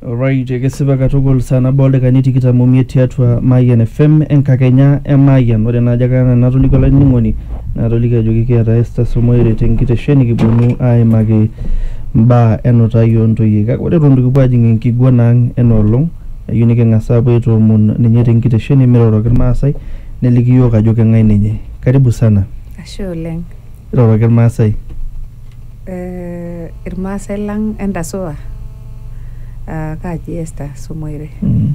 Alright, ekesipa katukul saa nabo oldakikani tikitam omiet tiatua Mayian FM enkakenya e Mayian. Ore naa ajo kara enatolikio olainining'oni naatoliki ajoki kiata Esther Somoere tenkitesheni kiponu aaimaki mbaa enutai oontoyie. Kake ore eton itu kipuo ajing enkiguana ang ena olong, eyieu niking'as aapuo aitoomon ninye tenkitesheni miroroki Irmaasai neliki iyiook ajo keng'ae ninye. Karibu sana. Ashe oleng. Iroroki Irmaasai. irmaasai lang entasua uh, kaaji Esther Somoire mm.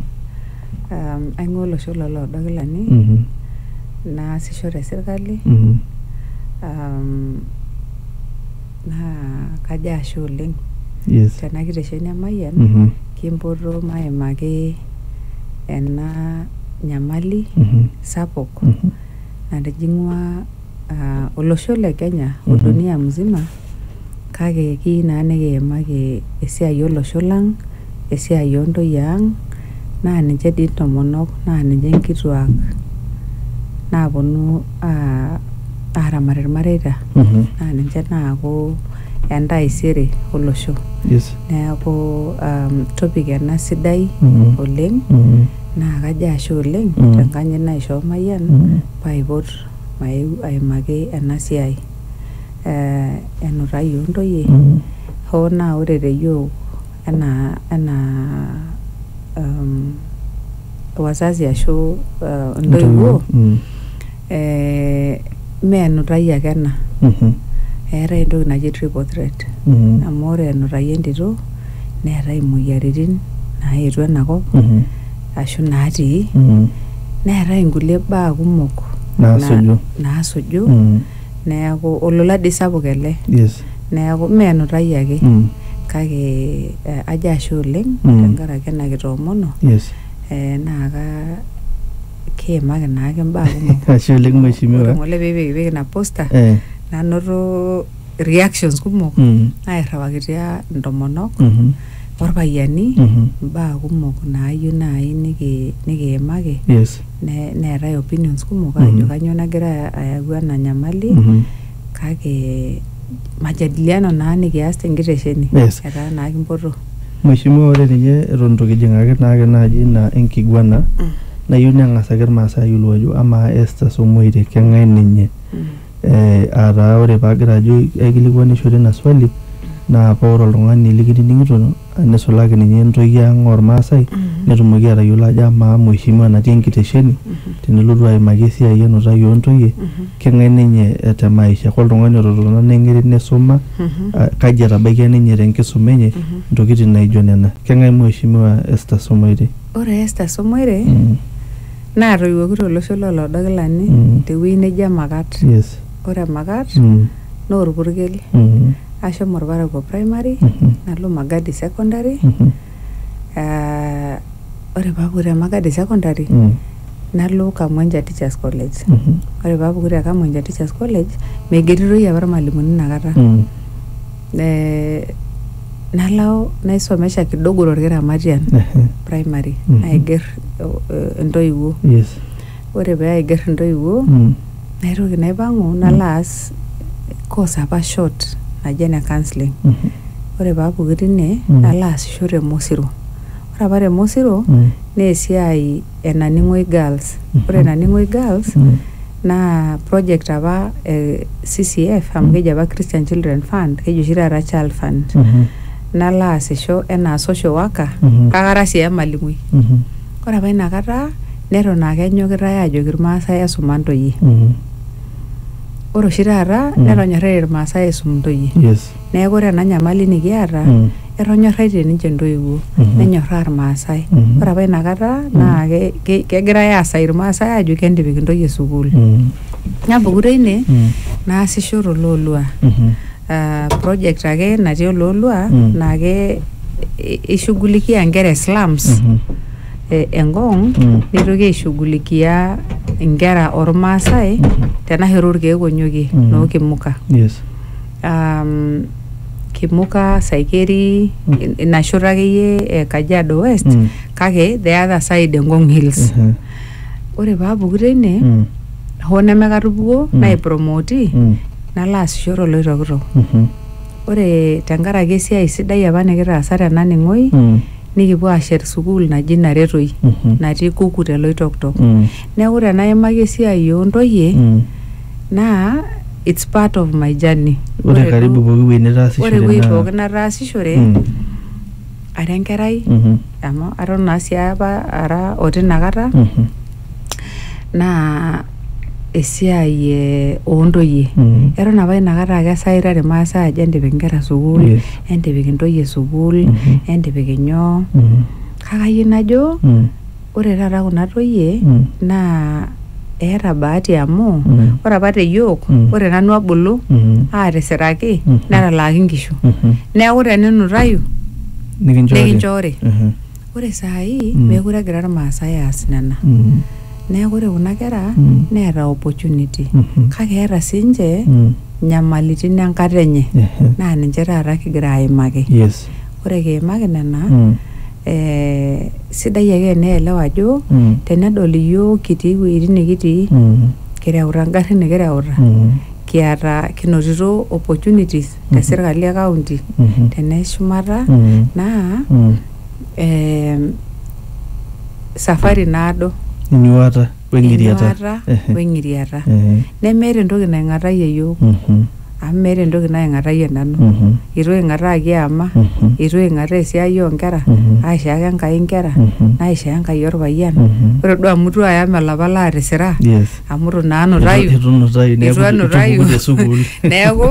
um, aing'ua olosho loloodokilani mm -hmm. naasisho te sirkali mm -hmm. um, naa kajo ashe oleng yes. tena kitesheni emayian mm -hmm. kimpoto maimaki ena nyamali mm -hmm. sapuk mm -hmm. natijing'ua ah, olosho le Kenya o Mhm. dunia mzima kake kiyieu naa nikiimaki esiai olosho lang, esiai oo ntoyie ang naa ninche dii intomonok naa ninche inkituak naaponu ah, aaramat ilmareita Mhm. naa ninche naaku entaisere olosho. Yes. Neaku um, topic ena sidai Mhm. oleng Mhm. naa kajo ashe oleng Mhm. tenkanyit naishoo Mayian Mhm. paaipot Maeu aimaki ena siai eh enutai oo ntoyie hoo naa ore te yiok enaa enaa umm wazazi ashu uh intoiwuo eh mee enutai ake ena eetae entoki naji triple threat amu ore enutai entito neetae imoyiaritin naetuo enakop. ashu naatii Mm. neetae inkulie baa kumok Naasuju. na- naasuju Mm. neeku olola dii sapuk ele Yes. neeku mee enutai ake Mm. kake eh, ajo ashe oleng Mm. tenkaraki ena kitoomono Yes. eh, naa ka kiimaki naake imbaa kumok Ashe oleng mheshimiwa. Ore ng'ole pipikipik ina posta Eh. nanoto reactions kumok Mhm. nairriwakitia intomonok Mhm. orpayiani Mhm. imbaa kumok naayieu naaji niki- nikiimaki yes ne- neetae opinions kumok Mhm. ajo kanyoo nagira ayau ena nyamali Mhm. kake majadiliano naa nikias tenkitesheni Yes. etaa naa kimpoto Mheshimiwa, ore ninye eton itu kijing'aki naake naaji ina enkiguana nayieu neng'as ake irmaasai ayiolou ajo amaa Esther Somoirek keng'ae ninye? Mm. Eh, ataa ore paagira ajo aikilikuanishore ina swali naa paa ore oltung'ani likinining'ito nisulaki ninye ntoyie ang ormaasai netumoki atayiolo ajo amaa mheshimiwa natii enkitesheni tenelotu aimaki esiai enutai ontoyie keng'ae ninye eh, te maisha koltung'ani ototona neng'iri nisuma ah, kaji etabaikia ninye tenkisuma enye ntokitin naijo nena keng'ae mheshimiwa Esther Somoirei? Ore Esther Somoirei Mm. Naatoiwuoki to losho loo Lodokilani te wueji neji Emakat. Ore Emakat naa olpurkel. Ashomo olparakuo primary nalo Magadi secondary ore pee apuku te Magadi secondary nalo Kamwencha teachers college. Ore pee apuku te Kamwencha teachers college meigeritoi apa ilmalimuni inakata. nalo naisomesha kidogo torkiramatian primary naiger entoiwuo ore pee aiger entoiwuo naitoki naipang'u nalo aas course apa short naji ene counseling ore pee apuku tine nalo aasisho te mosiro ore apa te mosiro naa esiai enaning'oi girls ore enaning'oi girls naa project apa e CCF amu keji apa Christian Children Fund keji oshi taata Child Fund nalo aasisho enaa social worker Mhm. kake ara sii emalimui Mhm. ore apa inakata neton aa kenyokitae aajoki irmaasai esuma ntoyie Mhm. ore oshi taata Mm. netonyorra irmaasai aisum ntoyie Yes. Neeku ore ena nyamali nikiata, etonyorraitie ninche intoiwuo, nenyorraa Irmaasai. Ore apa ina kata naa kegirai aasai Irmaasai aajo kentipik intoyie sukuul. Napuku teine naasisho to Loolua. Project ake natii Oloolua naa keishughulikia inkera e slums e Ngong neitoki aishughulikia inkera ormaasai tena shoto orkeek onyokie noo Kimuka. um, kimuka saikeri in- ina shoto akeyie e kajiado west Mm. kake the other side engong hills Mhm. ore paapuku teine Mm. hoo nemekatupukuo Mm. naipromoti Mm. nalo aasisho toloitokitok Mhm. ore tenkaraki esiai sidai apa nikitaasa tena ning'oi Mm. nikipuo aashet sukuul naji naretoi Mhm. natii kuku teloitoktok Mm. neeku tenaimaki esiai oontoyie Mm. naa it's part of my journey Ore Ore karibu duo- pooki wueji nitaasishore ore ewueji naa- pookin nataasishore Mm, ara enkerai mhm, amu aton naa sii apa ara oti inakata mhm, naa esiai eh, oontoyie mhm. eton apa inakata ake esaitare irmaasai ajo entipik inkera sukuul Yes. entipik intoyie sukuul Mhm. entipik inyoo Mhm, kake ayieu najo mm. Ore taata kuna toyie naa eeta bahati amu ore apa te yiok ore nanu abulu aatisiraki netalaaki inkishu neeku teninutayu nikinchoori ore saai meekure egira irmaasai aas nena neeku ore kuna kera neeta opportunity kake eeta siinche inyamalitin enkata enye naa ninche taata kigira aimaki ore kiimaki nena eh, sidai ake eneelewa ajo Mm. tenedol iyiok kitii iwuejitin nikitii Mm. kireuta ingarrin nikireuta Mm. kiata kinotito opportunities te sirkali e kaunti Mhm. tene shumata Mm. naa Mm. em, safari naado Inyuata. Weng'iriata. enyuaata Ehe. weng'iriata Ehe. nemeeta entoki naing'atayie iyiook Mhm. amu meeta entoki naing'atayie nanu Mhm. eitu aing'ataa kiama Mhm. eitu aing'ataa esiai oonkera Mhm. aishaaka Enkai inkera Mhm. naishaa Enkai orpayian Mhm. ore duo amu itu ayam olapa laatisira Yes. amu itu naa anutayu Itu- itu nutayu, neeku itu anutayu itupuku te sukuul. neeku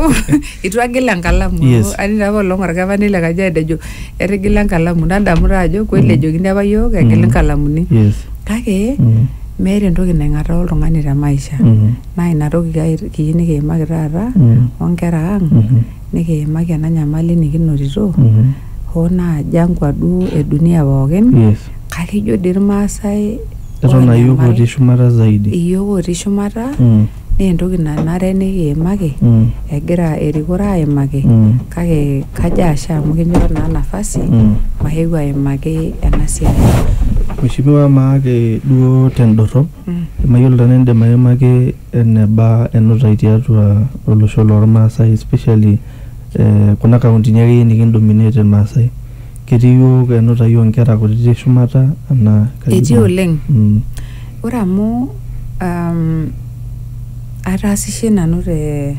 itu agil enkalamu Yes. atii taa apa olong orkepani le Kajiado ejo etigila enkalamu nadamu taa ajo kweli ejokini apa yiok egil inkalamuni yes kake Mm. meeta entoki naing'ataa oltung'ani te maisha Mhm. naa ina toki kai- kiyieu nikiimaki taata Mm. onkera ang Mhm. nikiimaki ena nyamali nikinotito Mhm. hoo naa jangwa duo e dunia pookin yes kake ijo dii irmaasai eton ayiok oonyamal. otii shumata zaidi iyiok otii shumata Mm. naa entoki nanare nikiimaki Mm. egira erikore aimaki Mm. kake kajo ashe amu kinchoo naa nafasi Mm. maeu aimaki ena siai. Mheshimiwa maake duo tendorrop Mm. mayiolo tenaa indim aimaki eneba enutai tiatua olosho lormaasai especially eh, kuna kauntini akeyie nikindominate irmaasai. Ketii iyiok enutai onkera kutiti shumata enaa kaji Etii iko? oleng. Mm. Ore amu um, ataasishe nanu te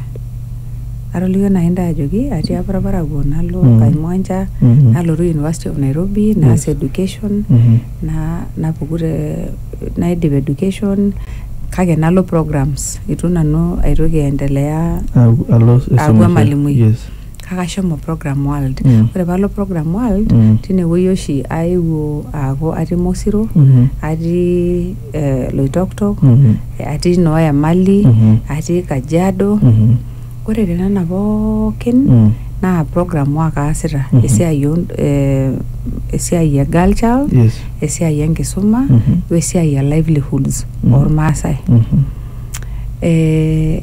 atolikio nai ntae ajoki atii apa orparakuo nalo mm. Kaimwanja mm -hmm. nalotu University of Nairobi yes. naas education mm -hmm. na napuku te naidip education kake nalo programs itu nanu aitoki aendelea aaku emalimui yes. kake ashomo program world Mm. ore paalo program world Mm. tinewueji oshi aewuo aaku atii mosiro Mhm. atii eh, loitoktok Mhm. atii noo emali Mhm. atii kajiado Mhm. ore tenena pookin Mm. naa program work aasita Mhm. esiai o eh, esiai e girl child Yes. esiai enkisuma Mhm. wesiai e livelihoods Mhm. ormaasai Mhm. eh,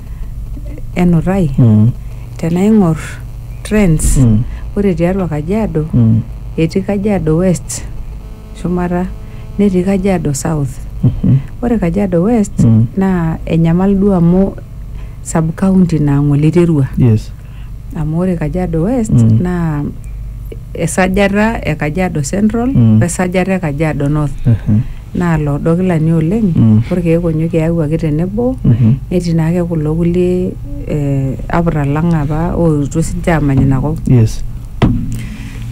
enutai mm. tenaing'or trends mm. ore tiatua Kajiado mm. etii Kajiado West shumata netii Kajiado South mm -hmm. ore Kajiado West mm. naa enyamal duo amu sub county naa ng'ole iterua yes. amu ore Kajiado West Mm. naa esajata e Kajiado Central Mm. wesajata e Kajiado North Mhm. naa loodo kilani oleng Mm. orkeek onyoki eyawuaki tenebo Mhm. netii naake kulo kulie eh, aputa lang apa ootuo sinche aamany inakop Yes.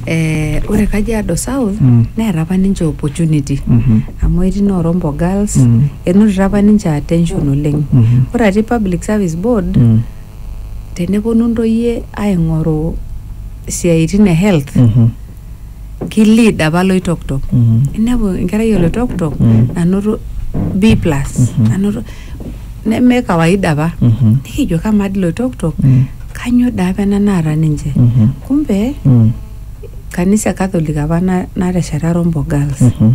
eh, ore Kajiado South Mm. neeta apa ninche opportunity Mhm. amu etii noorombo girls Mm. enotito apa ninche attention oleng Mhm. ore atii public service board Mm. teneponu ntoyie aing'oru isiaitin e health Mhm. ki lead apa loitoktok Mhm. inepu enkerai oloitoktok Mm. nanoto B plus Mhm. nanoto neme kawaida apa Mhm. nikijo kamaa dii loitoktok Mm. kanyoo daa apa ena naata ninche Mhm. kumbe Mm. kanisa e catholic apa na- natesheta rombo girls Mhm.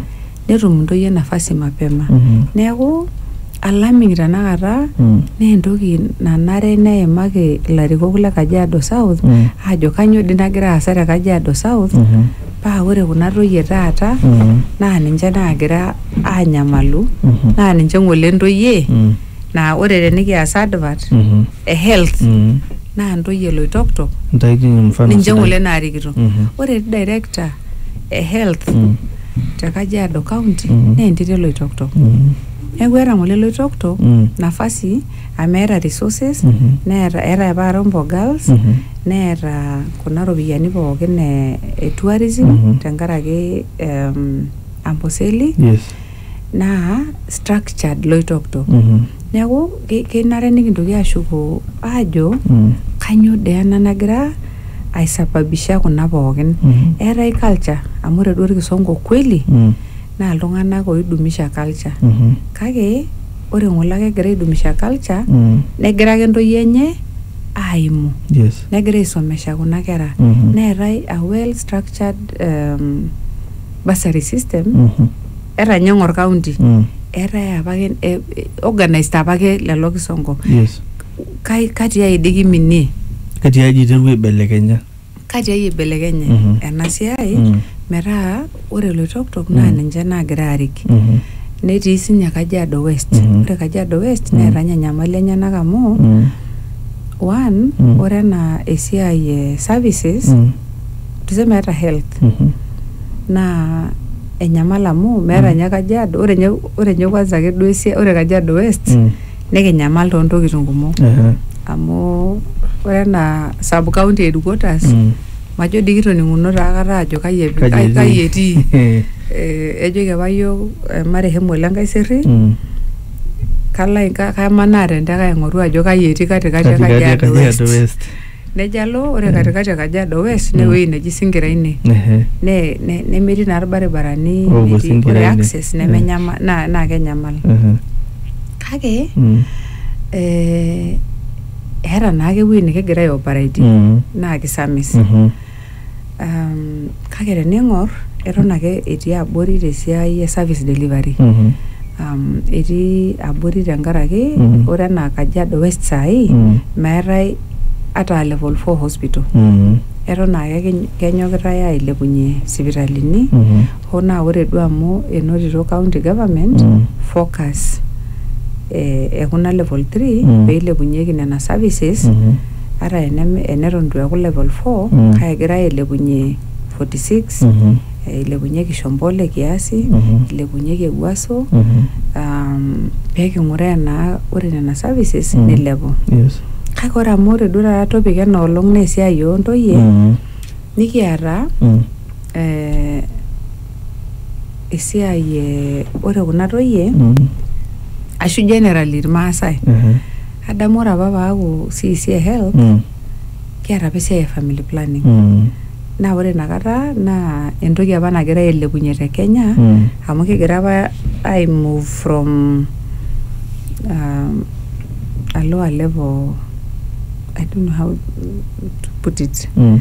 netum intoyie nafasi mapema Mhm. neeku alarming tenakata Mm. naa entoki nanare neimaki ilarikok le Kajiado South Mm. aajo kanyoo dii nagira aasa te Kajiado South Mhm. paa ore kuna toyie taata Mhm. naa ninche naagira aanyamalu Mhm. naa ninche ng'ole intoyie Mm. naa ore tenikias advert Mhm. e health Mm. naa ntoyie loitoktok Ntaiki mfano ninche sidai. ng'ole naarikito Mhm. ore director e health Mm. te Kajiado county Mhm. naa entito eloitoktok Mm. neeku eeta ng'ole loitoktok Mm. nafasi amu eeta resources Mhm. neeta eeta apa Rombo girls Mhm. neeta kuna ropiyiani pookin e, e tourism Mhm. tenkaraki em, Amboseli Yes. naa structured loitoktok Mhm. neeku ke- kenare nikintoki ashuko aajo Mm. kanyoo dee ena nagira aisababisha kuna pookin Mhm. eetae culture amu ore duo orkisongo kweli Mm. naa iltung'anak oidumisha culture Mhm. kake ore ng'ole ake egira aidumisha culture Mm. negira ake ntoyie enye aimu Yes. negira aisomesha kuna kera Mhm. neetae a well structured um, bursary system Mhm. eta ninye eng'or county Mm. eetae apake eh, eh, organized apake lelo kisongo Yes. Kai- kati ai dii kiminie Kati aji iterua aibelekenya. kati ai ibelekenye Mhm. ena siai Mm. metaa ore loitoktok naa Mm. ninche naagira aarik Mhm. netii sinye kajiado west Mhm. ore kajiado west Mm. neeta ninye nyamali enyenak amu Mm. one Mm. ore enaa esiai e services Mm. tuseme hata health Mhm. naa enyamal amu meeta Mm. ninye kajiado ore ninye ore ninye kwanza ake duo esia ore kajiado west Mm. nikinyamal toontokitin kumok Ehe. amu ore enaa sub county headquarters Mm. majo dii kitoning'uno taa aikata ajo kai ep- Kaji kai- kai etii Eh. Eh, ejoki apa yiok eh, marehemu ole nkaiserry Mm. kalo ai- ka- kamanaa tenteke aing'oru ajo kai etii katikati e Katikati e kajiado Kajiado west West. nejo alo ore katikati e Kajiado West ne ewueji neji Singira ine Ehe. ne- ne- nemetii naa irbaribarani Oopuo netii- Singira ore ine. access Mm. nemenyama naa naa kenyamal Ehe. kake Mm. eh, eeta naake ewueji nikigira aioperaitie Mm. naa kisamis Mhm. um, kake tening'or eton ake etii abori tesiai e service delivery mm -hmm. um, etii abori tenkaraki mm -hmm. ore enaa kajiado west saai mm -hmm. meetae ata level 4 hospital mm -hmm. eton ake kenyokitae ailepunye sipitalini mm -hmm. hoo naa ore duo amu enotito county government mm -hmm. focus ekuna eh, e level 3 mm -hmm. peilepunyeki nena services mm -hmm. ata enem- eneton itu eeku level 4 Mm. kake egirai ailepunye 46 Mhm. eh, ilepunyeki shombole kiasi Mhm. ilepunyeki ewuaso Mhm. um, peking'uraa enaa ore nena services Mm. nilepu Yes. kake ore amu ore duo taata topic ena olong naa esiai ontoyie Mm. nikiata Mm. eh, esiai eh, ore kuna toyie Mm. ashu generally irmaasai Ehe. adamu ore apa paaku CEC e health Mm. kiata apa esiai e family planning Mm. naa ore inakata naa entoki apa nagira ailepunye te Kenya Mm. amu kigira apa ai move from um, a lower level I don't know how to put it Mm.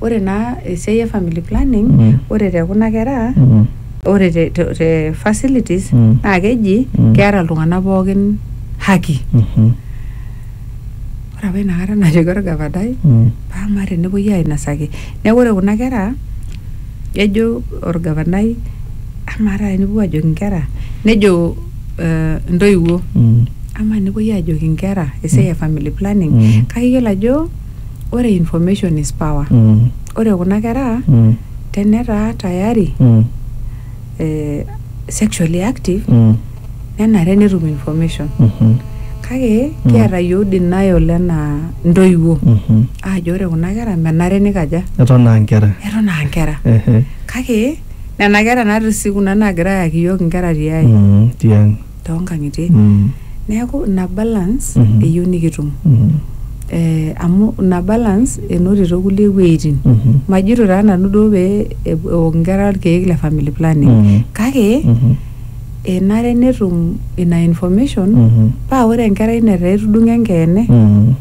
ore naa esiai e family planning mm. ore te kuna kera mm. ore te, te, te facilities mm. naa keji mm. keeta iltung'anak pookin haki mm -hmm. ore apa inakata najoki orgavanai mm. paa amaa tenepuoi ainosaki neeku ore kuna kera ejo orgavanai amaa taata tenipuo ajoki inkera nejo uh, intoiwuo mm. amaa tenepuoi ajoki inkera esiai e mm. family planning mm. kake iyiolo ajo ore information is power Mm. ore kuna kera Mm. tenetaa tayari Mm. eh, sexually active Mm. nenare netum information Mhm. kake Mm. kiata yiok denial enaa ntoiwuo Mhm. aajo ore kuna kera menare nikaja eton aa nkera eton aa nkera Ehe. kake nena kera natii sii kuna naagira ayaki yiok inkera tiai Mm, tiang toonkang'itie Mm. neeku ina balance Mhm. eyieu nikitum Mhm. eh, amu ina balance enotito kulie wueitin Mhm. majito taa nanu duo pee ep- eok inkera irkeek le family planning Mhm. kake Mhm. enare netum ina information Mhm. paa ore enkerai netaa etudung'o enkeene Mhm.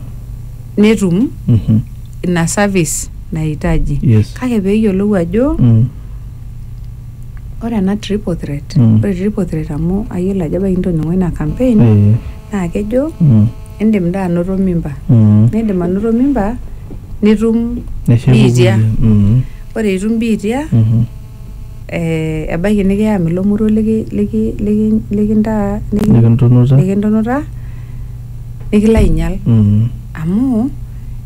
netum Mhm. ina service nahitaji Yes. kake peeyiolou ajo Mm. Ore ena triple threat, mm. ore triple threat amu ayiolo ajo ebaiki nitoning'o ina campaign eh. naa kejo mm. indim daa anoto mimba mm. nindim anoto mimba nitum biitia mm. ore itum biitia mm -hmm. eh, ebaiki nikiyam ilo moruo likintunuta nikilo ainyal mm. amu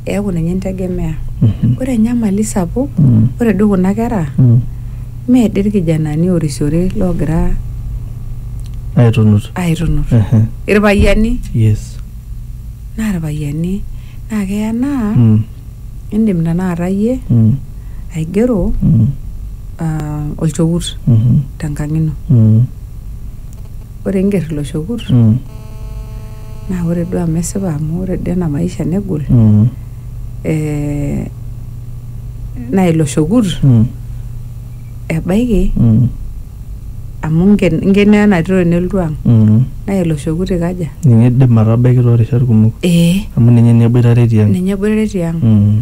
eaku ninye integemea mm-hmm. ore enyamali sapuk mm-hmm. ore duo kuna kera mm-hmm. mee dii irkijanani orisiore loogira aitunut aitunut irpayiani yes naa irpayiani naa keya naa mm. indim tanakata iyie mm. aigero mm. uh, olchokut mm-hmm. tenkang ino mm. ore inger ilo shokut Mm. naa ore duo amu esipa amu ore duo ena maisha negol Mm. eh, naa ilo shokut Mm. ebaiki Mm. amu inken inkeno ena tito nelotu ang Mm. naa ilo shokut ikaja Ninye idim atabaiki toorishat kumok ee amu ninye ninye eboitare tiang. ninye eboitare tiang Mm.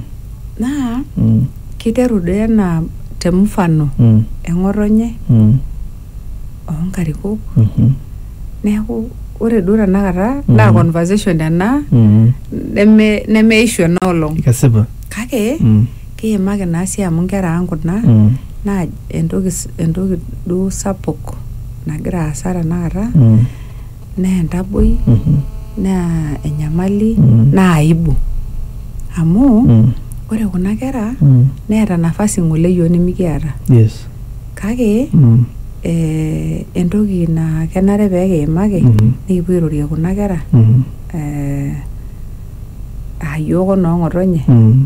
naa Mm. kiteru doi enaa te mfano Mm. eng'otonye Mm. oonkarikok Mhm. neeku ore duo tenakata naa Mhm. conversation ena Mhm. neme nemeishu ena olong Kesipa. kake Mm. kiimaki naa sii amu inkera ang kuna Mm. naa entoki s- entoki duo sapuk nagira aasa tenakata Mm. naa entaboi Mhm. naa enyamali Mm. naa aibu amu Mm. ore kuna kera Mm. neeta nafasi ng'ole yiok nimikiata Yes. kake Mm. eh, entoki naa kenare pee kiimaki Mhm. nikipuo airorie kuna kera Mhm. eh, aa yiok onoong'otonye Mm.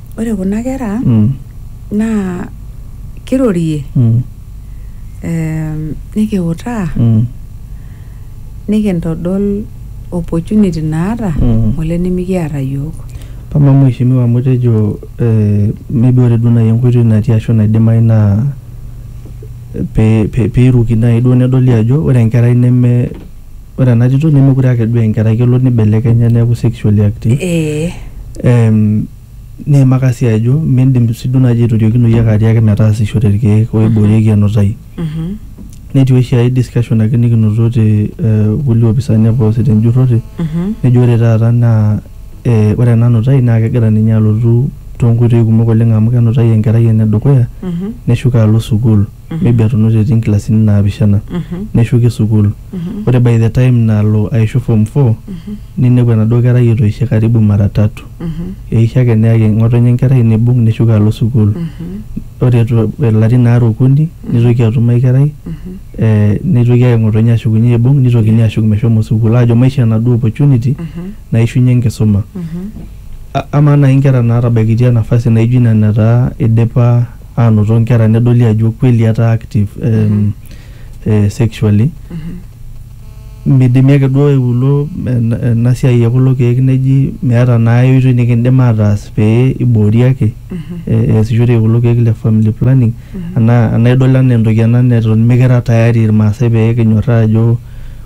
ore kuna kera Mm. naa kirorie Mm. em, nikiutaa Mm. nikintodol opportunity naata Mm. ngole nimikiata yiok. Pama mheshimiwa amu itejo eh, maybe ore duo naaji enkoitoi natii ashu naidimayu naa pe- pe- peiruki naaji duo nedoli ajo ore enkerai neme ore ena tito nemekure ake duo enkerai kelo nibelekenya neeku sexually active ee Em, niimaka sii ajo miindim sii duo naaji aitoriokinoyu ake atiaki metaasishore irkeek oiboorieki enutai mhm, netii oshi ae discussion ake nikinoto te eh, kulie opisani apa oosita enjurrore mhm, nejo ore taata naa eh, ore ena nutai naa kegira ninye alotu toonkoitoi kumok oleng amu kenutai enkerai enedukuya mhm, neshuko alo sukuul maybe atunute etii nkilasini naapishana neshuki sukuul ore by the time nalo aishu form four ninepu enaduo kerai etoishe karibu mara tatu eisho ake neyaki ng'otonye enkerai neibung neshuko alo sukuul ore etu ilarin aare okuni neitoki atum ae kerai eh, neitoki ake ng'otonye ashukunye aibung neitokini ashuk meshomo sukuul aajo maisho enaduo opportunity naishunye enkisuma A- amaa naaji inkera naatabaikitia nafasi naijo ina netaa idipa anoto nkera nedoli ajo kweli etaa active eh, mm -hmm. eh, sexually mm -hmm. midimi ake duo eulo ena siai ekulo keek neji meeta naa oitoi nikindim ataas pee iboori ake mm -hmm. easishore eh, kulo keek le family planning mm -hmm. anaa anaa idol anaa entoki ena neton mikira tayari irmaasai pee kinyorraa ajo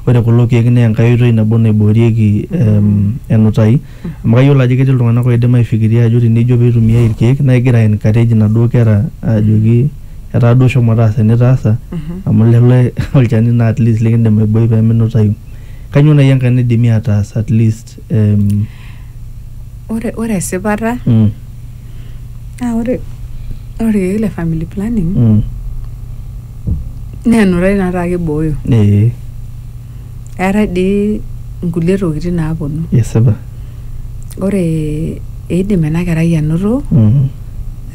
ore kulo keek naa enkae oitoi nabo naiboorieki mm -hmm. um, enutai amu kayiolo ajo ketii iltung'anak oidim aifikiria ajo tenijo pee itumiai irkeek naa igira ai encourage inaduo kera ajoki etaa duo shomo taasa enitaasa amu lelo olchani naa at least likindim aiboi pee minutayu. Kanyoo naai enkae naidimi ataas at least em Ore, ore esipata mm, naa ore, ore irkeek le family planning mm, naa enutai naa taake ibooyo. ee. Eetae dii nkulie tokitin naaponu. Esipa. Ore eidim ena kerai anoto mm-hmm.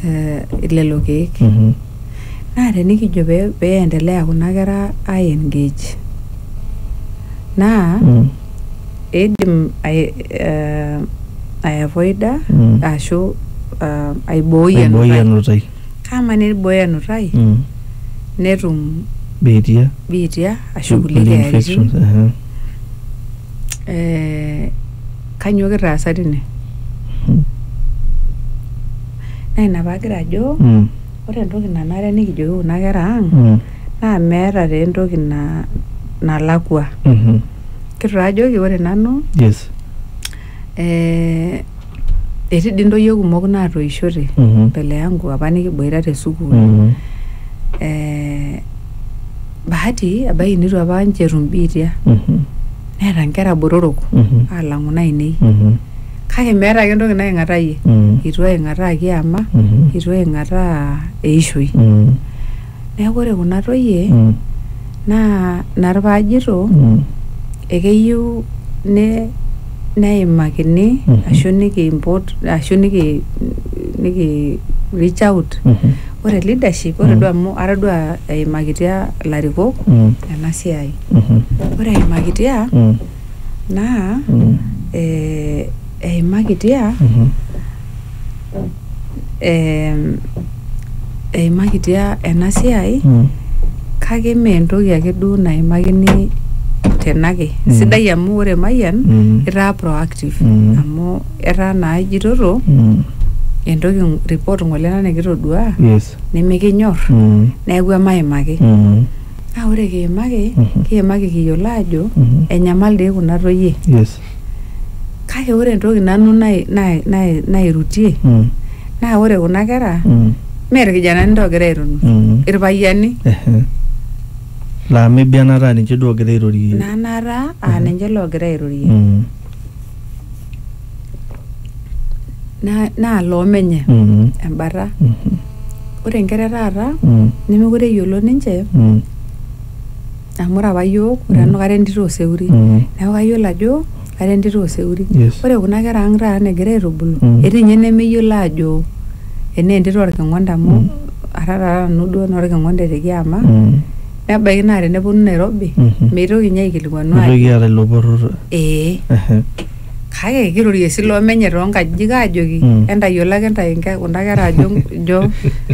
eh, lelo keek. Mm-hmm. Naa tenikijo pee peendelea kuna kera ai engage naa mm. eidim eh, aiavoida mm. ashu eh, aibooi enutai. Kaama neibooyo enutai Mm. netum Biitia. biitia ashu kulie Kulie keyaritin. infections. aha. Eh, kanyoo kitaasa tine? Mm. Naa ina paagira ajo Mm. ore entoki nanare nikijoki kuna kera ang' Mm. naa meeta taa entoki na nalakua. Mhm. Kitu taa ajoki ore nanu Yes. eh, etii dii ntoyie kumok naatoishote Mhm. mbele yangu apa nikiboita te sukuul Mhm. eh, bahati ebaiki nitu apa ninche etum biitia Mhm. neeta nkera botorok Mhm. alang'u nainei Mhm. kake meeta ake entoki naing'atayie Mhm. itu aing'ataa kiama Mhm. itu aing'ataa eishoi Mhm. Neeku ore kuna toyie mm. naa ina pee ajito mm. ekeyieu ne neimakini mm -hmm. ashu nikiimpot ashu niki niki reach out mm -hmm. ore leadership ore mm. duo amu atodua eimakitia ilarikok mm. ena siai mm -hmm. ore eimakitia mm. naa mm. eh, eimakitia mm -hmm. eh, eimakitia ena siai Mm. kake mee entoki ake duo naimakini tenake Mm. sidai amu ore mayian Mm. itaa proactive Mm. amu etaa naa ijitoto Mm. entoki ng- report ng'ole ena nikitodua Yes. nimikinyor Mm. neeku emaimaki Mm. naa ore kiimaki Mhm. kiimaki kiyiolo ajo Mhm. enyamal dii kuna toyie Yes. kake ore entoki nanu nai- nai- nai- nairutie Mm. naa ore kuna kera Mm. mee irkijanani taa ogira airunu Mm. irpayiani Ehe. laa maybe enataa ninche duo ogira airorie nanata aa Mhm. ninche loogira airorie Mm. Na- naa loomenye Mm. embata Mhm. ore inkera e taata Mm. nemekure eyiolo ninche Mm. amu ore apa yiok ore nanu kara entito oseuri Mm. neeku kayiolo ajo kara entito oseuri Yes. ore kuna kera ang taata negira aitubulu Mm. etii ninye nemeyiolo aajo enaa entito orking'onda amu Mm. ara taata nanu duo naa orking'onda etekiama Mm. nebaiki naa teneponu Nairobi Mhm. meitoki ninye aikilikuanu Mitoki aajo aata ilo poror. ee Ehe. kake kirorie sii loo menye too nkajijik aajoki Mm. entayiolo ake ntae nke- kuna kera ajo jo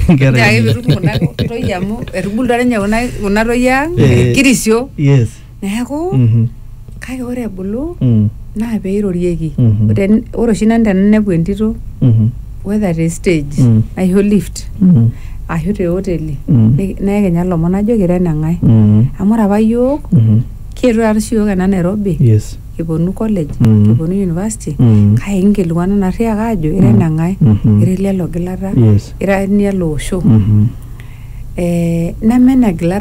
Nkera nchoo ake enye. pitum kuna toyie amu etubulutua ninye kuna kuna toyie ang Eh. kirisio yes neeku Mhm. kake ore ebulu Mm. naa peirorieki Mhm. Ten- ore oshi nanu tenainepu entito Mhm. whether te stage Mm. aisho lift Mhm. ashu te hoteli Mm. ni- neekenya lomon najoki ira eneng'ae Mm. amu ore apa yiok Mhm. kietuo taata oshi yiok ena nairobi yes eponu college mm. eponu university mm. kake inkilikuana narriaka ajo ira mm. eneng'ae mm -hmm. ira ele logilata yes. ira enialo osho mm -hmm. eh, neme enegilata